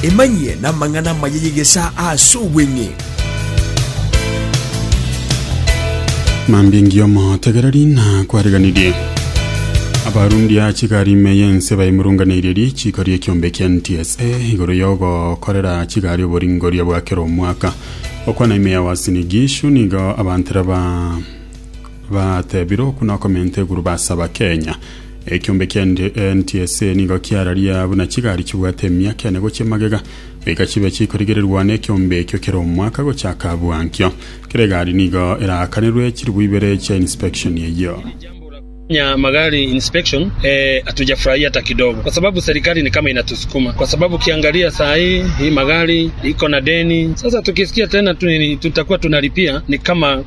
Emanyie namang'ana amaya y'egesaa ase obweng'e. Mambia engiya omotegereri na kwariganirie abarundi a chigari ime y'ense baimurunganeirie richiiko ri'ekiombe kia NTSA igoro y'ogokorera chigari oboringoria bwa kera omwaka okwana ime ya Uasin Gishu nigo abantera ba batebire okuna okomenta eguru basaba Kenya Ekiombe kia NTSA nigo kiararia buna chigari chibwate emiaka ene gochia magega, goika chibe chikorigererwa nekiombe ekio kera omwaka gochaka abwo ankio. Kera egari nigo eraakanirwe chiribu ibere chia inspection eyio. Kufanya magari inspection ee hatujafurahia hata kidogo kwa sababu serikali ni kama inatusukuma kwa sababu ukiangalia saa hii hii magari iko na deni sasa tukisikia tena tutakuwa tunalipia ni kama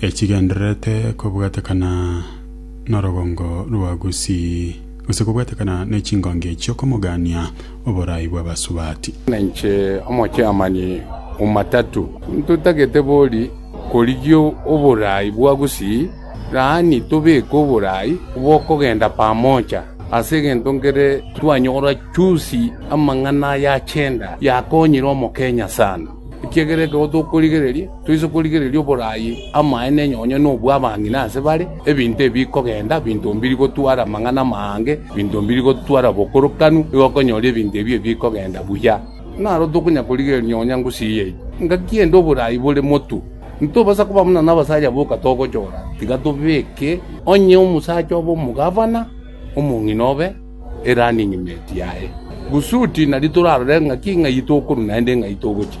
echigendererete kobwatekana norogongo rwa Gusii, gose kobwatekana ne chingongi chi'okomogania oboraai bw'abasubati. Nainche omochaamani o matatu, ntotagete bori korigia oboraai bwa Gusii, yaani tobeke oboraai bw'okogenda pamoja. Ase egento nkere twanyora chusi amang'ana ayachenda yakonyire Omokenya sana, ekiagera ekero tokorigereria, Toise korigereria oboraai amaene onye onye nobw'abang'ina ase bare, ebinto ebi bikogenda, ebinto mbiri gotwara amang'ana amaange, ebinto mbiri gotwara obokorokanu, nigo okonyora ebinto ebi ebi bikogenda buya. Naro tokonyara korigereria nonya ngusi eye ime. Engaki ende oboraai bore motu. Ntitobasa koba buna nabasacha boka togochora, tiga tobeke onye omosacha obe omogavana, omong'ina obe erunning mate yaye. Kusudi nari torarore ng'aki ng'ai tokorwa naende ng'ai togochia.